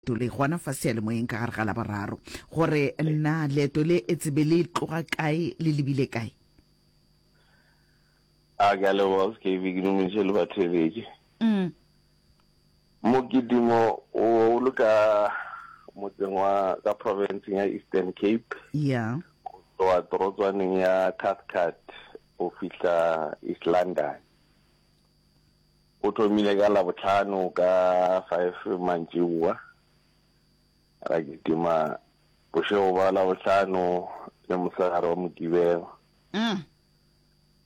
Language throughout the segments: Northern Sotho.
Leeto le gona fa seyalemoyeng ka gare ga Laboraro, gore na leeto le etse be le tloga kae le lebile kae? A ke a leboga Skepi, ke dumediše le batheeletši. Mokitimo o o le ka motseng wa ka profenseng ya Eastern Cape, go tloga torotswaneng ya Cathcart go fihla East London. O thomile ka Labohlano ka five mantšiboa, ra kitima bošego ba Labohlano le mosegare wa Mokibelo.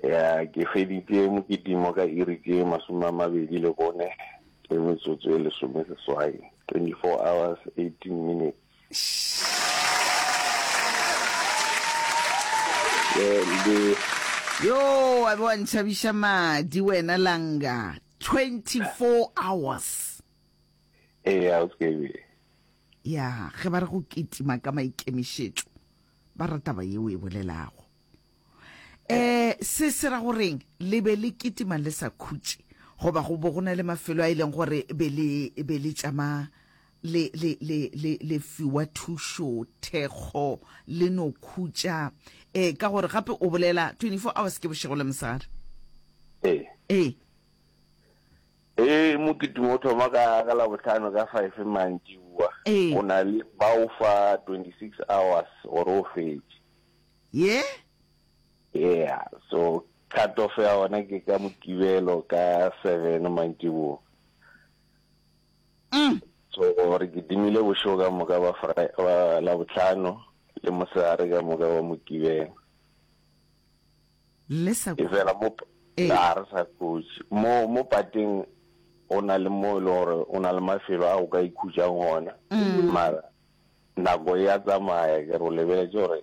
Ya ke feditše mokitimo ka iri tše masome a mabedi le bone le metsotso e lesome seswai, twenty-four hours, eighteen minutes. Yoo, wa be wa ntšhabiša madi wena Langa. 24 hours. Ee, a o skebe. Ya, ge ba re go kitima ka maikemišetšo, ba re taba yeo e bolelago. Eh, se se ra goreng le be le kitima le sa khutše goba go bo go na le mafelo a e leng gore be le be le tšama le, le, le, le, le fiwa thušo, thekgo, le no khutša. E, ka gore gape o bolela 24 hours ke bošego le mosegare. E. E. E, mokitimo o thoma ka, ka labohlano ka five mantšiboa. E. O na le bao fa 26 hours gore o fetše. Ye? Yeah, so cut off ya ona ke ka mokibelo ka seven mantšiboa. Uhm. So re kitimile bošego ka moka ba Labohlano le mosegare ka moka wa Mokibelo. Le sa. Efela mo ga re sa khutše. Mo mo pateng go na le mo e le gore o na le mafelo a o ka ikhutšang gona. Mara nako ya tsamaya ke re o lebeletse gore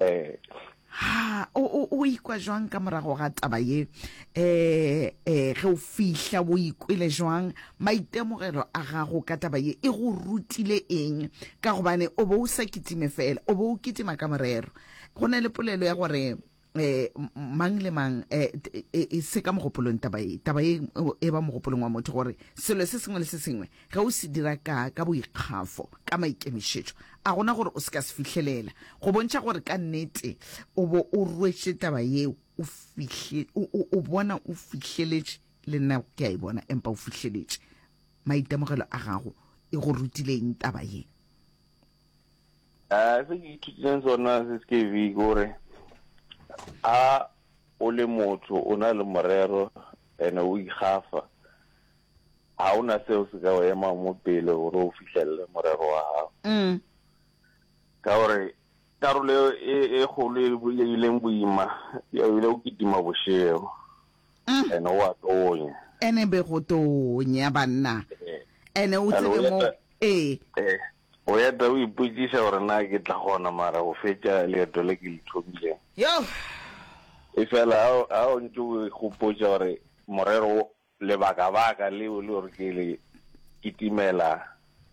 um Ha, o, o, o ikwa jwang ka morago ga taba ye? Um, um, ge o fihla, o ikwele jwang? Maitemogelo a gago ka taba ye e go rutile eng? Ka gobane o be o sa kitime feela, o be o kitima ka morero. Go na le polelo ya gore eh mang le mang eh e, e se ka mogopolong taba e taba e e ba mogopolong wa motho gore selo se sengwe le se sengwe ge o se dira ka ka boikgafo ka maikemišetšo a gona gore o se ka se fihlelela go bontšha gore ka nnete o bo o rwetše taba yeo o fihle o bona o fihleletše le nna ke a e bona empa o fihleletše maitemogelo a gago e go rutileng taba ye Eh, se ke ithutileng sona se se ke vi gore a o le motho o na le morero ene o ikgafa ga o na seo se ka o ema mo pele gore o fitlhelele morero wa gago mm. ka gore karolo e, e kgolo e, e ileng boima ya ile o kitima bošego mm. ene o a tonya ene be go tonya banna eh. ene o tsebe mo ee eh. O eta o ipotšiša gore na ke tla kgona mara go fetša leeto le ke le thomileng. Yoh! Efela ha o, ha o ntše o ikgopotša gore morero wo, lebakabaka leo le gore ke le kitimela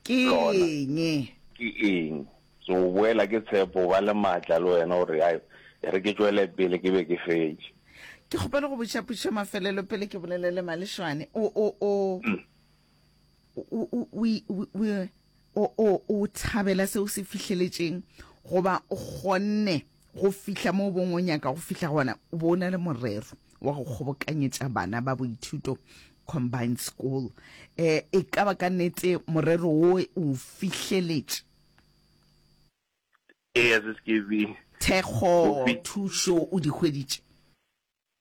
Ke lona eng? ke eng, ke o boela ke tshepo o ba le matla le wena gore, Hai, e re ke tšwele pele ke be ke fetše. Ke kgopela go botšiša potšišo ya mafelelo pele ke bolelele Malešwane. O, o, o. o thabela se o se fihleletšeng goba o kgonne go fihla mo bongwe nyaka go fihla gona o bo o na le morero wa go kgobokanyetša bana ba boithuto combined school um e ka ba ka nnete morero wo o fihleletše thekgo thušo o di hweditše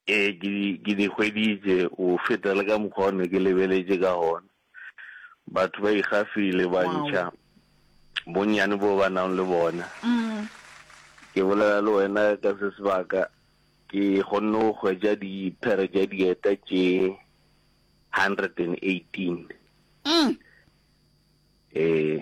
Ee, ke di, ke di hweditše, go feta le ka mokgwa o ne ke lebeletše ka gona. Batho ba ikgafile, ba Wow. ntšha bonnyane bo ba nang le bona. Mm. Ke bolela le wena ka se sebaka, ke kgonne go hwetša diphere tša dieta tše 118. Mm. Ee.